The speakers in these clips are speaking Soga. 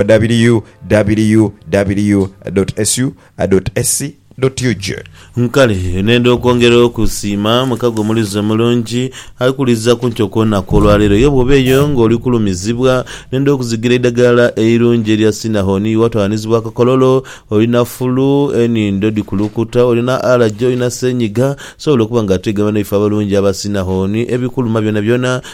www.sw.su.sc.ug. Nkale nenda okwongera okusiima mukago omulizi omulungi ali kuwuliriza ku ntyo kw'onaku olwaleero. Aye bw'oba eyo ng'oli kulumizibwa, nenda okuzigira eidagala eirungi erya Sinahoni. Iwe atwaalanizibwa akakololo, olina fulu, enhindo dhikulukuta, olina alaje, olina seenyiga, osobola okuba nga ate gamba naife abalungi aba Sinahoni, ebikuluma byonabyona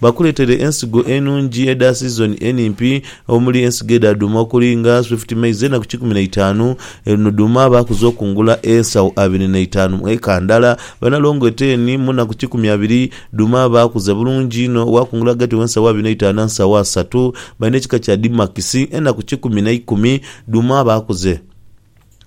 Bakuleetere ensigo enungi edha siizoni enimpi omuli ensigo edha dhuuma okuli nga Swift Maize ena ku kikumi na itaanu. Eno dhuuma baakuza okungula ensawo abiri na itaanu mu eka ndala. Banalongo eteeni mu na ku kikumi abiri. Dhuuma baakuza bulungi inho waakungula ghagati w'ensawo abiri n'eitaanu na nsawo asatu. Balina ekika kya Dimakisi ena ku kikumi na ikumi. Dhuuma baakuze.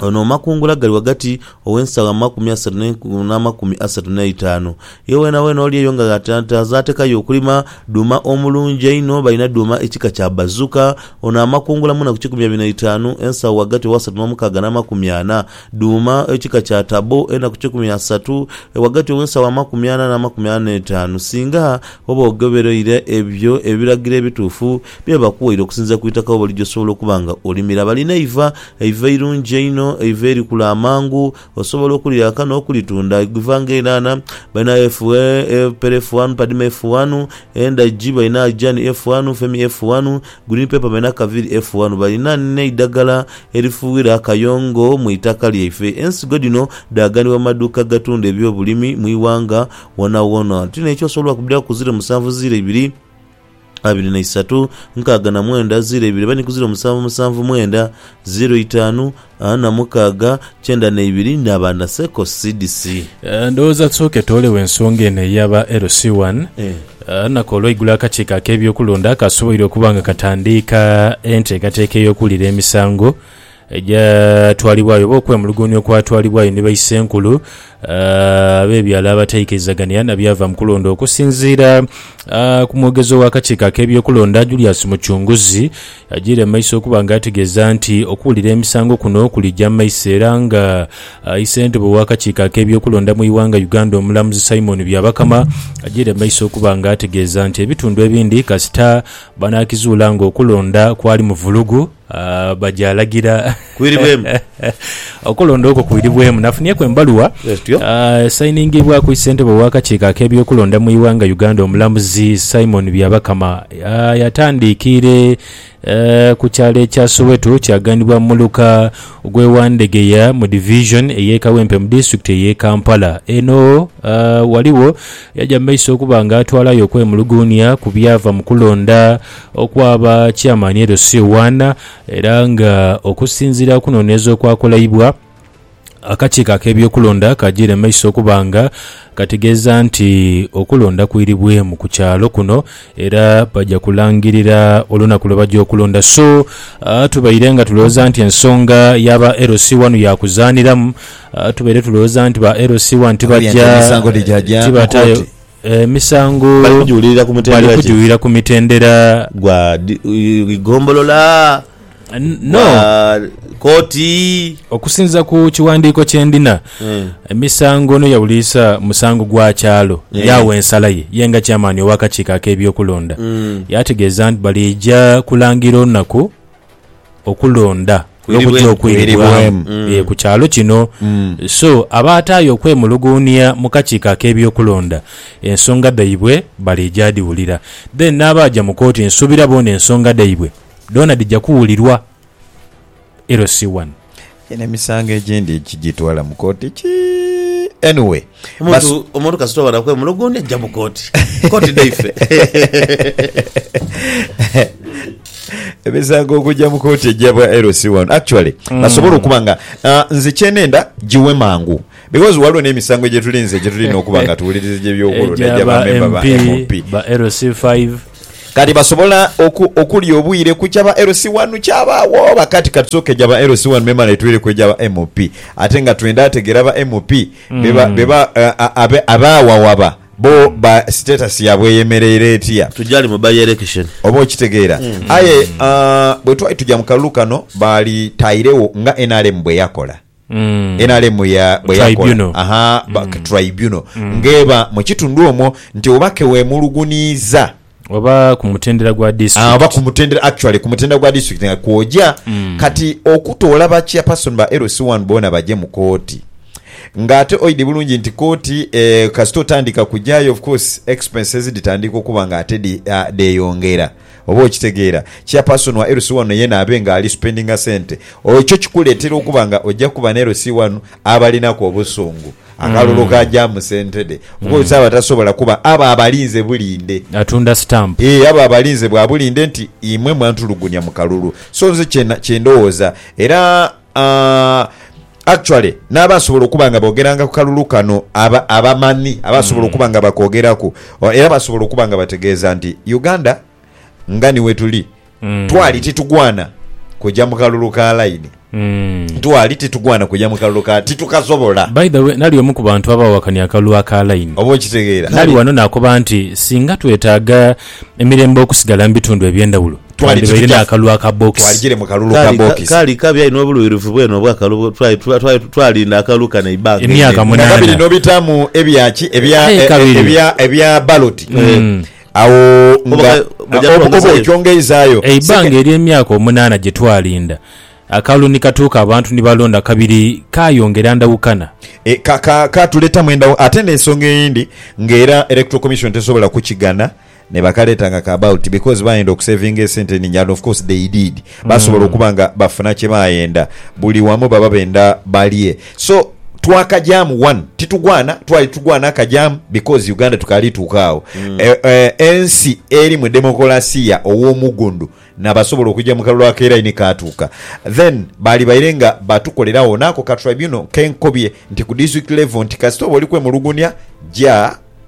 Ono makungula gali ghagati ow'ensagho amakumi asatu n'enkumi n'amakumi asatu n'eitaanu. Ye weenaweena oli eyo nga azaatekayo okulima dhuuma omulungi einho, balina dhuuma ekika kya Bazuka. Ono amakungula mwena ku kikumi abiri na itaanu, ensagho ghagati ow'asatu n'omukaaga n'amakumi ana. Dhuuma ekika kya Tabo ena ku kikumi asatu, ghagati ow'ensagho amakumi ana n'amakumi ana n'eitaanu. Singa oba ogobereire ebyo ebiragiro ebituufu, Bye bakuwaire okusinziira ku itaka we bali gy'osobola okuba nga olimira. Balina eiva, eiva eirungi einho, eiva erikula amangu. Osobola okulyaka n'okulitunda. Eiva nga enhaanha balina FA, Pere F1, Padima F1, endhagi balina Ajani F1, Femi F1, Green Pepper balina Kaviri F1. Balina n'eidhagala erifuughira akayongo mu itaka lyaife. Ensigo dhino dhaaganibwa mu maduuka agatunda eby'obulimi mu ighanga wonawona. Tulina ekyosobola okubiraku ziro musanvu ziro ibiri. abiri na isatu, nkaaga na mwenda, ziiro ibiri, bani ku ziiro musanvu, musanvu mwenda, ziiro itaanu, ana mukaaga, kyenda na ibiri, naba na seko sidisi. Eh, Ndowooza tusooke twolewo ensonga eno ey'aba LC wano. Eh. Eh, Naku olweigulo akakiiko ak'ebyokulonda kaasoboire okuba nga katandiika enteekateeka ey'okuwulira emisango, Egyatwalibwayo oba okwemulugunya okwatwalibwayo ni baisenkulu ab'ebyalo abataikirizagania na byava mu kulonda okusinziira ku mwogezi ow'akakiiko ak'ebyokulonda Julius Mucunguzi yagiire mu maiso okuba nga ategeeza nti okuwulira emisango kuno kulija mu maiso era nga i Ssentebe w'akakiiko ak'ebyokulonda mu iwanga Uganda omulamuzi Simon Byabakama agiire mu maiso okuba nga ategeeza nti ebitundu ebindi kasita banaakizuula nga okulonda kwali mu vulugu Aah baja alagira Kwiribwemu. okulonda okwo kwiribwemu nafunieku embaluwa Bwetutyo. aah esainingibwaku ssentebe ow'akakiiko ak'ebyokulonda mu ighanga Uganda omulamuzi Simon Byabakama aah yatandiikiire eeh ku kyalo ekya Soweto kyaganibwa mu muluka gw'e Wandegeya mu division ey'e Kawempe mu disitulikiti ey'e Kampala. Eno aah ghaligho yaja mu maiso okuba nga atwalayo okwemuluguunia ku byava mu kulonda okwa ba Chairman LC One era nga okusinziira kunoneeza okwakolaibwa, akakiiko akebyokulonda kagire maiso okuba nga kategeeza nti okulonda kwiribwemu ku kyalo kuno era baja kulangirira olunaku lwebaja okulonda so tubaire nga tulowooza nti ensonga ya ba LC One yakuzaniramu tubaire tulowooza nti ba LC One tibaja tibataayo Emisango Bali kugiwulirira ku bali mutendera ki? kugiwulira ku mitendera Gwa di- i- gombolola, N- no gwa kooti. okusinza ku kiwandiiko kye ndina Eh. emisango no yawuliisa musango gwa kyalo Eh. yaawa ensala ye ye nga kyamaani ow'akakiiko ak'ebyokulonda Mm. yaategeeza nti baliija kulangira olunaku okulonda n'okuja okwiribwamu ku kyalo kino so abaataayo okwemuluguunia mu kakiiko ak'ebyokulonda ensonga dhaibwe baliija dhiwulira then n'abaaja mu kooti nsuubira boona ensonga dhaibwe dhoona dhija kuwulirwa. LC1. Eno emisango egindi kigitwala mu kooti kii anyway omuntu omuntu kasita obona kwemulugunya jja mu kooti kooti dhaife emisango okujja mu kooti ejja bwa LC wano actually mm. basobola okuba nga uh, nze kyenenda giwe mangu because waliwo n'emisango gyetulinze gyetulina okuba nga tuwuliriza gyebyokulonda gyabamemba ba MP ba LC5 Kati basobola oku, okulya obwire ku kya ba LC wanu kyabaagho oba? Kati ka tusooke egya ba LC wanu memale twire ku egya ba MP. Ate nga twenda ategeera ba MP be ba, be ba, a, a, a, abaagho awaba, bo ba status yaabwe eyemereire etya? Tugyali mu by-election. Oba okitegeera? Aye, a, bwe twali tuja mu kalulu kano, baali taairegho nga nrm bwe yakola. nrm ya bwe yakola tribunal ng'eba mu kitundu omwo nti oba ke weemulugunyiiza oba ku mutendera gwa district oba ku mutendera actually ku mutendera gwa district nga kwogya kati okutoola ba chairperson ba LC one boona bagye mu kooti ng'ate oidhi bulungi nti kooti kasita otandika kugyayo of course expenses dhitandiika okuba ng'ate dheeyongera. Oba okitegeera, kya person wa LC wano yena abe nga ali spendinga sente, ekyo kikuleetera okuba nga oja kuba ne LC wanu abalinaku obusungu. Akalulu ka jaamu sente dhe. Oba oti abo atasobola kuba abo abalinze bulinde. Atunda stamp. Eeh abo abalinze bwa bulinde nti imwe mwantulugunya mu kalulu. So nze kye ndowooza era. Actually n'abaasobola okuba nga boogeranga ku kalulu kano aba abamanhi abaasobola okuba nga bakoogeraku o- era baasobola okuba nga bategeeza nti Uganda nga ni wetuli twali titugwana kuja mu kalulu ka layini twali titugwana kuja mu kalulu ka titukasobola By the way, nali omu ku bantu abaawakanya akalulu aka layini. oba okitegeera Nali wano nakoba nti singa twetaaga emirembe okusigala mu bitundu eby'endhawulo, Twandibaire n'akalulu aka bokisi. Kaali, kaali kabi aye n'obuluhirivu bwene obw'akalulu twali, twali, twalinda akalulu kano eibanga einene. Emyaka Nga munaana. kabiri n'obitaamu ebya ki? Ebya, Aye e, e, kabiri. ebya, ebya baloti. Agho nga, Oba ka- baja oba, oba twongezaayo. okyongeizaayo. Eibanga ery'emyaka omunaana gye twalinda, akalulu ni katuuka abantu ni balonda kabiri, kaayongera ndawukana. E, ka, ka, kaatuletamu endawu. Ate n'ensonga eyindi, ng'era Electoral Commission tesobola kukigana. Nebakaleeta nga ka bulk because bayenda okusevinga esente eningi and of course they did. Basobola okuba nga bafuna kyebayenda. Buli wamu baba benda balye. So twakagyamu one titugwana twali tugwana akagyamu because Uganda tukaali tuuka agho. Ensi eri mu demokolasiya ow'omugundu nabasobola okugya mu kalulu ake line kaatuuka. Then baali baire nga batukolera agho naako ka tribunal kenkobye nti ku district level nti kasita oba oli kwemulugunya gya.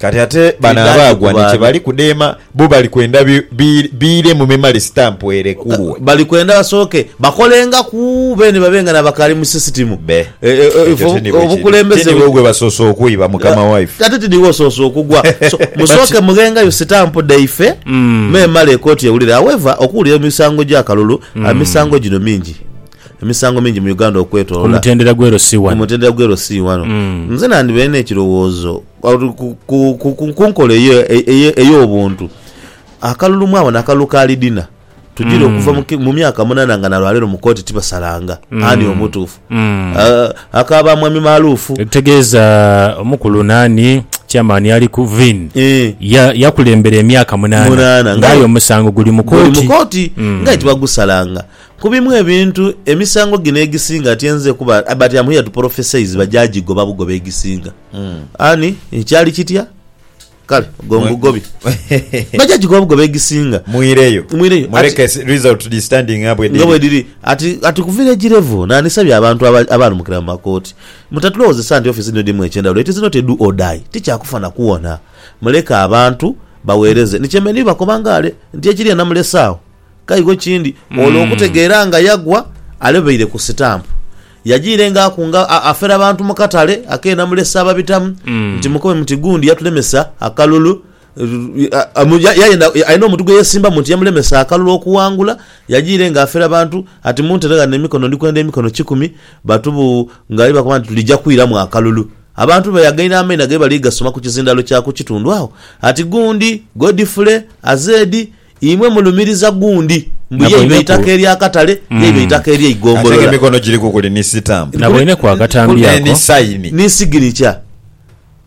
Kati ate bano abaagwa ni kye bali kudheema, bo bali kwenda biiremu memale sitampu erekulwe. Bali kwenda basooke bakolengaku beene babe nga n'abakaali mu sisitimu. Be. Ekyo ti nibwe kiri. Ti niwe gwe basoose okwiba, mukama waife. Ate ti niwe osoose okugwa. So, musooke mughengayo sitampu dhaife memale ekooti ewulire. However, okuwulira emisango gy'akalulu, emisango gino mingi. Emisango mingi mu Uganda okwetolola. Ku mutendera gw'e Rossy wano. Ku mutendera gw'e Rossy wano. Nze nandibaire n'ekirowoozo. Ku nkola eyo ey'obuntu, akalulu mwabona akalulu ka Lidina tujira okuva mu myaka munana nga na lwa leero mu kooti tibasalanga ani omutuufu. Aka ba Mwami Maaluufu. Ekitegeeza omukulu nani? Chairman ali ku Vin yakulembera emyaka munana nga aye omusango guli mu kooti nga aye tibagusalanga. Ku bimu ebintu, emisango gino egisinga atyenze kuba bati am here to prophesize bajagigoba bugobi egisinga. Ani, kyali kitya? Kale ogwo Mwe- ngugobi. Bajagigoba bugobi egisinga. Mwireyo. Mwireyo. Ati- Muleke si- result di standing nga bwe nga dhiri. bwediri ati ati ku village level nanisabye abantu aba- abalumukira mu makooti mutatulowozesa nti office dhino dhirimu ekyendawulo it is not a do or die tikyakufa na kuwona muleke abantu bawereze ni kyemenhi bakoba ngale nti ekiriya namulese awo Kaigo kindi ole okutegeera nga yagwa alebeire ku sitampu. Yajiirenga akunga afera bantu mu katale ak'e Namulese ababitamu nti mukobe muti gundi yatulemesa akalulu Alina omuntu gwe yeesimbamu nti yamulemesa akalulu okuwangula Yajiirenga afera bantu ati muntere ghano emikono ndi kwenda emikono kikumi batu bu ng'ali bakoba nti tulija kwiramu akalulu Abantu be yaghaire amaina ghe bali gasoma ku kizindaalo kya ku kitundu agho ati gundi, Godfrey, Azedi, Imwe mulumiriza gundi mbu ye iba Naboineku. eitaka ery'akatale, ye iba eitaka Ate nga ery'eigombolola. emikono giriku kuli ni sitampu. Naboineku akatambi Ne- ni ako. sayini. Ni siginicha.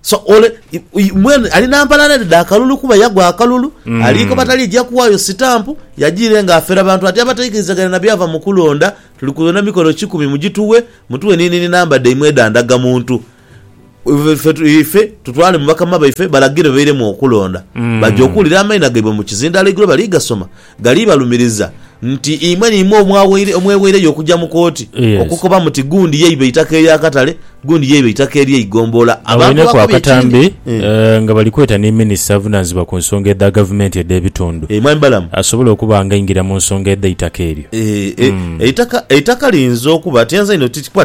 So ole i- i- mwene ali na mpalana dhe dha kalulu kuba yagwa akalulu, aliikoba talija kuwaayo sitampu, yajiire nga afera bantu ati abataikirizagania na byava mu kulonda, tuli kubeera na mikono kikumi mugituwe, mutuwe ni nini namba dhaimwe edha ndagamuntu. Ife tutwale mu bakama baife balagire bairemu okulonda, baja okuwulira amaina gaibwe mu kizindaalo eigulo bali gasoma. Gali balumiriza nti imwe n'imwe omweweireyo okuja mu kooti okukoba muti gundi yaiba eitaka ery'akatale, gundi yaiba eitaka ery'eigombolola. Agho eneku akatambi nga bali kweta ni minisita avunaanizibwa ku nsonga edha gavumenti edh'ebitundu asobole okuba ng'aingira mu nsonga edh'eitaka eryo. Eitaka liyinza okuba, tienza inho,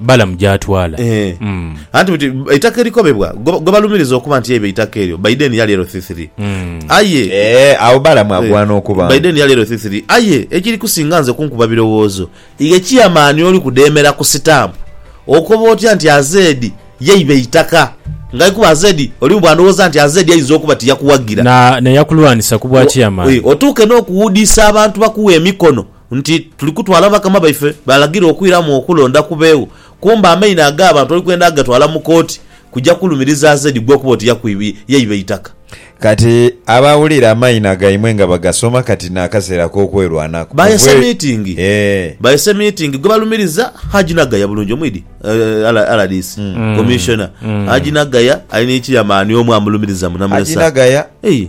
Balamu gy'atwala. Eeh. Mm. Anti buti eitaka erikobebwa gwe gwe balumiriza okuba nti eibye eitaka eryo Biden yali erothithiri. Mm. Aye. Eeh, agho Balamu Eh, agwana okuba nti. Biden yali erothithiri. Aye ekiri kusinga nze kunkuba birowoozo, ighe kiyama ani oli kudheemera ku sitampu? Okoba otya nti Azedi yeiba eitaka? Ngaye kuba Azedi oli mu bwandhowooza nti Azedi aidza okuba tiyakuwagira. Na, na yakulwanisa ku bwa kiyama Wi, ani? otuuke n'okuwuudiisa abantu bakughe emikono Nti tuli kutwala bakama baife balagira okwiramu okulonda kubeegho, kumbe amaino ag'abantu oli kwenda ghatwala mu kooti kuja kulumiriza Zeddy gwe okuba oti yakwibye yaiba eitaka. Kati abawulira amaina gaimwe nga bagasoma kati n'akaseera ak'okwerwanako. Bayese miitingi. Eeh. Bayese miitingi gwe balumiriza Haji Nagaya bulungi omwidhi? rdc Commissioner Haji Nagaya ali ni chairman omu amulumiriza munamulesa. Haji Nagaya. Eeh.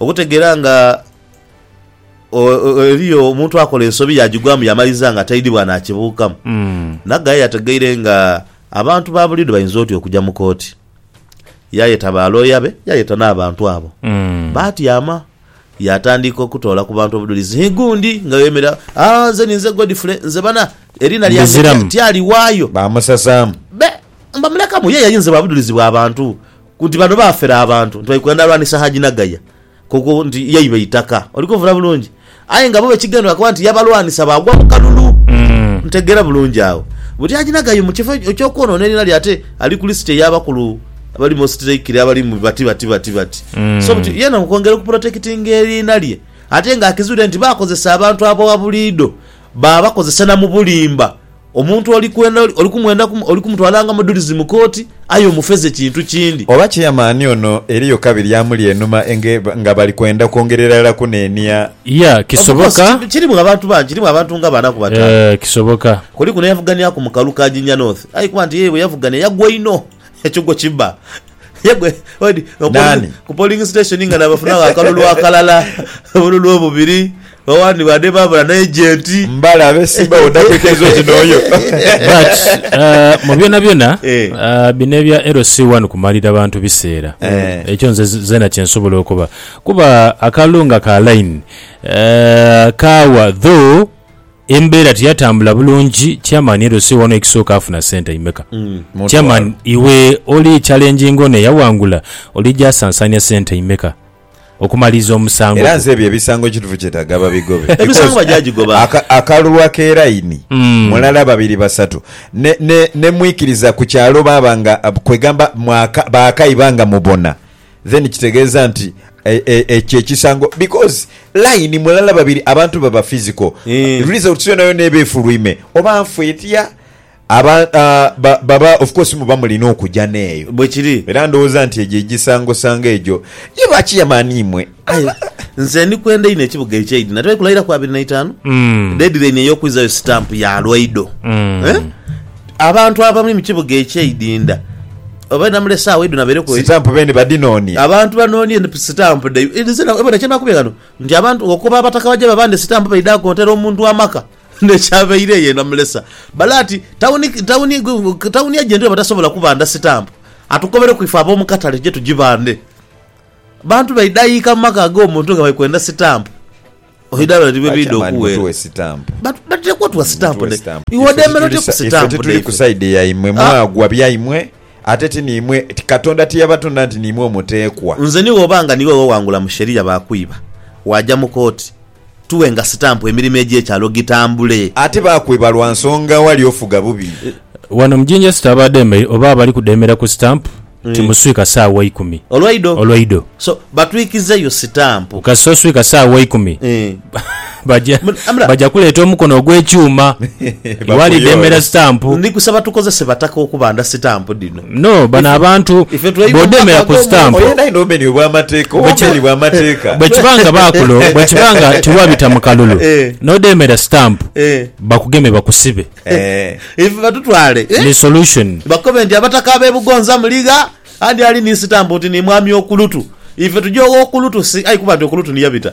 Okutegeera nga eriyo omuntu akola ensobi yaagigwamu yamaliza nga taidhibwa naakibuukamu. Naggayi yategeire nga abantu ba buliidho bainza oti okuja mu kooti. Yaayeta baalooya be, yaayeta n'abantu abo. Baatyama, yaatandika okutoola ku bantu obudhulizi. Hi gundi nga yeemera, Aa, nze ninze Godfrey, nze bana, eriina lyange Ndiziramu. tyaliwaayo. Baamusasaamu. Be, mbamulekamu, ye yayinze bwa budhulizi bwa bantu. Ku nti bano baafera abantu, nti bali kwenda lwanisa Haji Nagaya, ku ku nti yaiba eitaka. Oli kunvuna bulungi? Aye nga bo ekigendererwa kuba nti yabalwanisa baagwa mu kalulu. Ntegeera bulungi agho? Buti Haji Nagaya mu kifo eky'okwonoona eriina lye ate ali ku lisiti ey'abakulu abali most likely abali mu bati bati bati bati. So buti yeena mu kwongera okupulotekitinga eriina lye ate ng'akizuire nti bakozesa abantu abowabuliidho baabakozesa na mu bulimba Omuntu oli kwenda oli, oli kumwenda ku, oli kumutwalanga mudhulizi mu kooti, aye omufeze kintu kindi. Oba chairman ono eriyo kabiri amuli enhuma enge, nga bali kwenda kwongererala kunenia. Yeah, Of course, kisoboka. ki, kirimu abantu bangi, kirimu abantu nga bana ku bataanu. Eh, kisoboka. Kuliku n'eyavuganiaku mu kalulu ka Jinja North, aye kuba nti ye bwe yavugania yagwa inho, ekyo gwo kiba. Yagwa, odi, ku polling, Nani? ku polling station nga nabafunagho akalulu akalala, obululu obubiri. Bawandibade baabula n'ejenti. Mbalabe simba wo dakwikiriza oti n'oyo. But mu byonabyona bino ebya LC one kumalira bantu biseera ekyo nze zeena kye nsobola okoba kuba akalulu nga ka line kaawa though embeera teyatambula bulungi chairman LC one ekisooka afuna sente imeka? Chairman iwe oli challenginga ono eyawangula oli gyasansaanya sente imeka? okumaliriza omusango Era gwo. nze ebyo ebisango ekitufu kyetaga babigobe Emisango because bajajigoba. aka, akalulu akeraini Mm. mulala babiri basatu ne, ne, ne mwikiriza ku kyalo baaba nga kwegamba mwaka, baakaiba nga mubona then kitegeeza nti e, e, ekyo ekisango because line mulala babiri abantu baba physical Eh. results yonayona eba efulwime oba nfwa etya Aba, ba, baba, of course muba mulina okuja n'eyo. Bwe kiri. Era ndowooza nti egyo egisangosango egyo ye bakiyama ani imwe? Aye nze ndi kwenda inho ekibuga eky'eidhina. Tewali kulairaku abiri na itaanu? Deedilaini ey'okwizayo sitampu ya lwaido. Eh? Abantu abami mu kibuga eky'eidinda, obaire namula esaawa idho nabaireku e. Sitampu beene badinoonie. Abantu banoonie sitampu dhaibwe. Nze na, bona kye nakubye ghano, nti abantu, okuva abataka baja babande sitampu baidha konta, era omuntu w'amaka N'ekyabaire eyo enamulesa bale ati, Tawuni ejo endi bwebatasobola kubanda sitampu, atukobereku ife ab'omu katale tuje tugibande. Abantu baidhaika mu maka ag'omuntu nga bali kwenda sitampu. Oidha bale ni bwe biidha okuweera. Batera kuwa tuwa sitampu ne iwe odheemera otya ku sitampu? Ife tituli ku sayidi yaimwe. Mwagwa byaimwe, ate ti niimwe, Katonda tiyabatonda nti niimwe omuteekwa. Nze ni bw'oba nga niiwe weewangula mu sheria baakwiba, waaja mu kooti. tughenga sitampu emirimo egy'ekyalo gitambule. Ate baakwiba lwa nsonga awali ofuga bubi. Wano mu Jinja City abaadeemeire oba abali kudeemera ku sitampu ti muswika saawa ikumi Olwaido. olwaido. So batwikizeyo sitampu. Kasita oswika saawa ikumi baja Amula. baja kuleeta omukono ogw'ekyuma iwe ali deemera Bakuyoola. sitampu. Ndi kusaba tukozese bataka okubanda sitampu dhino. No, bano abantu bw'odheemera ku sitampu, bwe kiba nga baakulo, bwe kiba nga tiwabita mu kalulu, n'odheemera sitampu, bakugeme bakusibe. Ife batutwale Ni solution. bakobe nti Abataka ab'e Bugonza muli gha, andi ali ni sitampu nti ni Mwami Okulutu. Ife tuje ogh'Okulutu si aye kuba nti Okulutu ni yabita.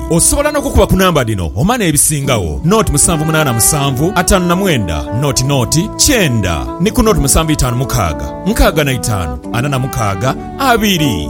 Osobola n'okukuba ku namba dhino oma n'ebisingagho, noti musanvu munaana musanvu, ataanu na mwenda, noti noti, kyenda, ni ku noti musanvu itaanu mukaaga, nkaaga na itaanu, ana na mukaaga, abiri.